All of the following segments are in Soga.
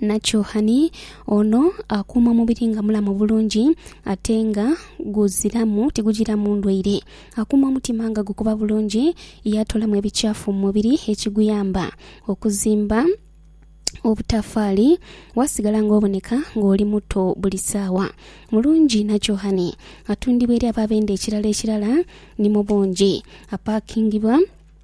Nakyohani ono akuuma omubiri nga mulamu bulungi ate nga guziramu tigujiramu ndwaire. Akuuma omutima nga gukuba bulungi ye atoolamu ebikyafu mu mubiri ekiguyamba okuzimba obutafaali waasigala ng'oboneka ng'oli muto buli saawa. Mulungi Nakyohani atundibwa eri abo abenda ekirala ekirala ni mu bungi. Apaakingibwa.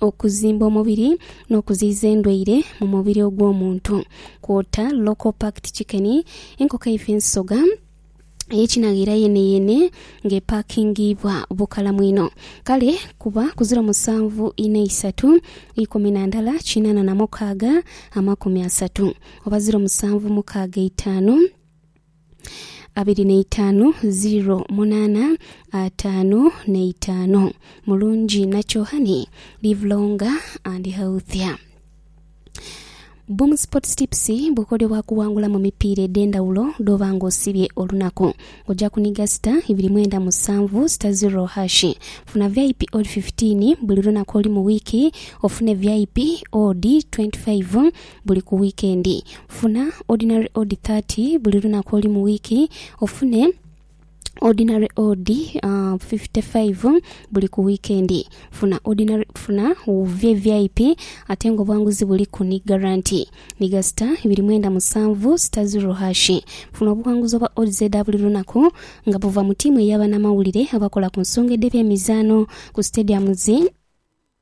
okuzimba omubiri n'okuziyiza endwaire mu mubiri ogw'omuntu kwota local packed chicken, enkoko eife ensoga eyekinagheera yeneyene nga epakingiibwa bukalamu inho kale kuba ku ziro musanvu inha isatu ikumi na ndhala kinana na mukaaga amakumi asatu oba ziro musanvu mukaaga eitaanu. abiri neitaanu ziro munaana ataanu neitaanu. Mulungi nakyo honey live longer and healthier. Boom Sports Tips bukodyo bwa kuwangula mu mipiira edh'endhawulo dh'oba nga osibye olunaku. Oja kuniga sita ibiri mwenda musanvu sita ziro hashi. Funa vip odd 15 buli lunaku olu mu wiiki ofune vip odd 25 buli ku wiikendi. Funa Ordinary Odd thirty buli lunaku oli mu wiiki, ofune Ordinary Odd fifty five buli ku wiikendi. Funa Ordinary funa VVIP ate nga obwanguzi buliku ni garanti. Nhiga sita ibiri mwenda musanvu sita ziro hashi. Funa obughanguzi obwa Odds edha buli lunaku nga buva mu tiimu eya banamawulire abakola ku nsonga edh'ebyemizaano ku stadiums.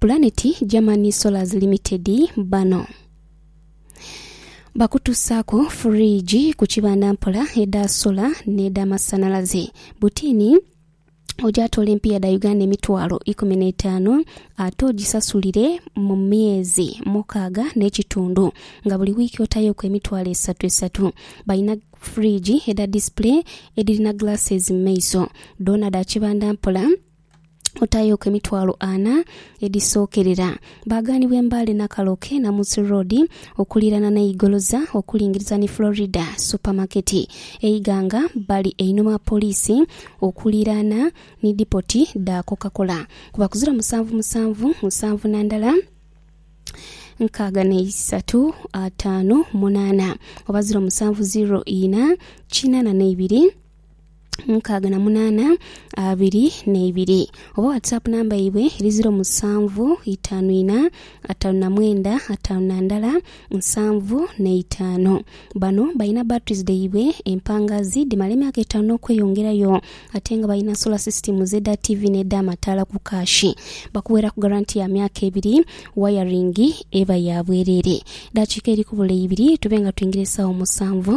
Pulaneti Germany Solars Limited bano bakutusaaku furiiji ku kibanda mpola edha sola n'edhamasanalaze butini ogyatoola empiiya dha Uganda emitwalo ikumi n'etaanu ate ogisasulire mu myezi mukaaga n'ekitundu nga buli wiiki otayoku emitwalo esatu esatu. Balina furiiji edha display edhirina glasses mu maiso dhoona dha kibanda mpola otayooku emitwalo ana edhisookerera. Baaghanibwa embaale Nakaloke, Namusu Road, okuliirana ni Igoloza okulingiriza ni Florida Supermarket. E Iganga bali einhuma wa poliisi okuliiraana ni dipoti dha Coca-Cola. Kuba kuzira musanvu musanvu musanvu na ndala nkaaga na isatu ataanu munaana oba ziro musanvu ziro ina kinaana na ibiri. mukaaga na munaana abiri n'eibiri oba whatsapp namba yaibwe eri ziro musanvu itaanu ina ataanu na mwenda ataanu na ndala nsanvu n'eitaano. Bano balina batteries dhaibwe empangazi dhimala emyaka etaanu n'okweyongerayo ate nga balina solar systems edha TV n'edh'amataala ku kaashi. Bakuweeraku garanti ya myaka ebiri, wayaringi eba ya bwereere. Eddakiika eri kubula ibiri tube nga twingira essaawa musanvu.